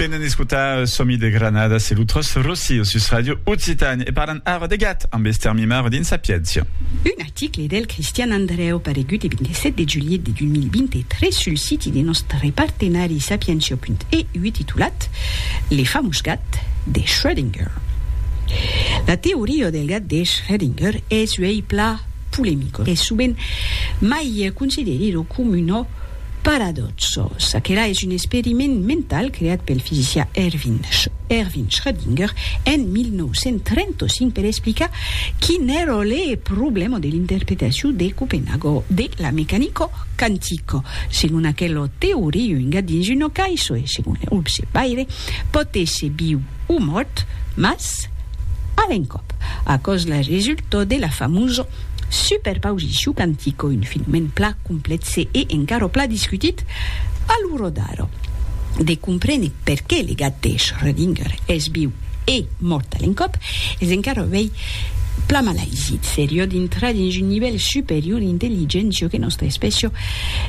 Venen escotar Somi de Granada, se lo tros Rossi o sus Radio Occitània e parlan ara de gat amb Esther Mimaro dins Sapiéncia. Un article del Cristian Andrèu paregut e 27 de julhet de 2023 sul siti de nòstre partenari sapientia.eu titulat Le famós gat de Schrödinger. La teoria del gat de Schrödinger es uèi plan polemica e sovent mai considerida coma una Paradòxo, çaquelà es un experiment mental creat pel fisicià Erwin Erwin Schrödinger en 1935 per explicar quin èra le problèma de l'interpretacion de Copenhago de la mecanica quantica. Segon aquela teoria, un gat dins una caissa e, segon le observaire, pòt èsser viu o mòrt, mas a l'encòp. Aquò's la resulta de la famosa Super pausissiu cantico, un filmèn pla complètze e encara pla discutit a lo rodar. De comprene perqué le gat de Schrödinger es viu e mòrt a l'encòp es encara uèi pla malaisi. Serió dintrar dins un nivèl superior d'intelligéncia que nòstra espècia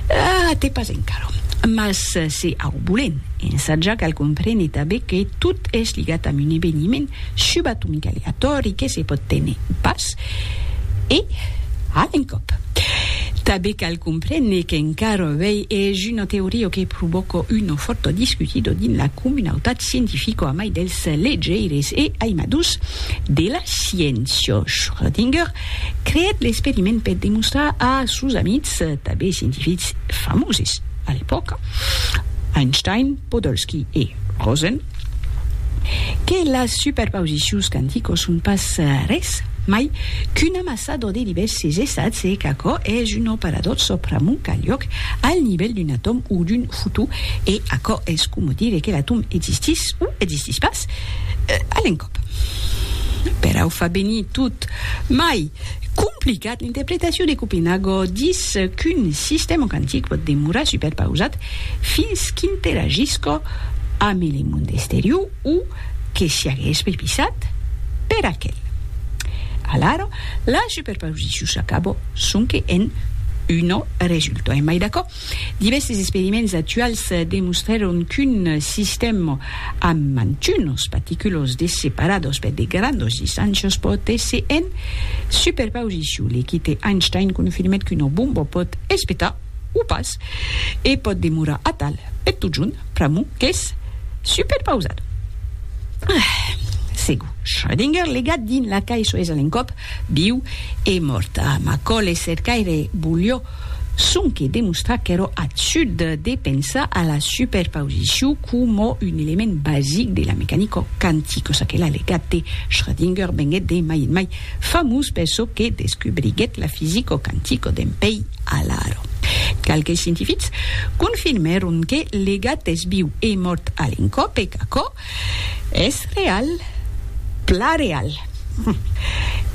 a te pas encara. Mas se au volèm ensatjar cal comprene tanben que tot es ligat amb un eveniment subatomicaleatòri que se pòt téner pas E, a un còp. Tanben cal comprene qu'encara avèi es una teoria que provòca una fòrta discutida dins la comunautat scientifica a mai dels legeires e aimadors de la sciéncia. Schrödinger creèt l'experiment per demostrar a sos amics, tanben scientifics famoses a l'epòca, Einstein, Podolsky e Rosen, que las superpausicions quanticos son pas res mai qu'un amassador de divèrses estats e qu'aquò es un operadorso pr'amont qu'a liòc al nivèl d'un atòm o d'un fotó e aquò es coma dire que l'atòm existís o existís pas a l'encòp. Perau fa venir tot mai complicat l'interpretacion de Copenhago, dis qu'un sistèma quantic pòt demorar superpausat fins qu'interagisca amb le monde exterior o que siagues prepisat per aquel. Alara, la superposicion s'acaba sonque en un resultat. Emai d'aquò, divèrses experiments actuals demostrèron qu'un sistèm amb mantunas particulas de separadas per de grandas distàncias pòt èsser en superposicion. L'equite Einstein confirmèt qu'una bomba pòt espetar o pas, e pòt demorar atal per totjorn, pr'amor qu'es superpausat. Ah! Segur, Schrödinger legat dins la cai soes a l'encòp, viu e mòrt. Ah, Macaulay cercaire volió sonque demostrar qu'èra absurd de pensar a la superpausicion coma un element basic de la mecanica quantica, çaquelà legat de Schrödinger venguèt de mai en mai Famós per çò que descubriguèt la fisico quantico d'en pei Alaro. Qualques scientifics confirmèron que le gat es viu e mòrt a l'encòp e qu'aquò es real, plan real.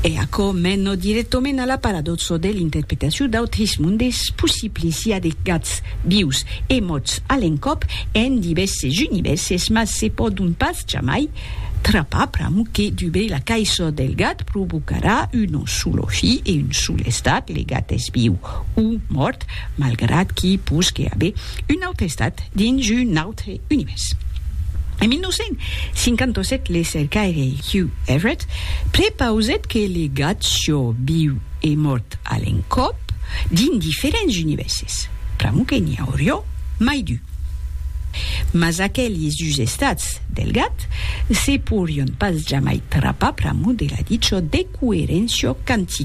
E aquò mena dirèctament a la paradòxa de l'interpretacion d'autres mondes possibles, i a de gats vius e mòrts a l'encòp en divèrses univèrses, mas se pòdon pas jamai Trapar pram que dubei la caisò del gat provocarà un solo fi e un sol estat, le gat es viu o mòrt, malgrat qu'i posque aver un aute estat dins un autre univèrs. En 1957 le cercaire Hugh Everett prepausèt que le gat sió viu e mòrt a l'encòp dins diferents univèrses, pr'amor que n'i aurió mai d'un. Mas aquelis dus estats del gat se porion pas jamai trapar pr'amor de la dicho de coeréncia cantica.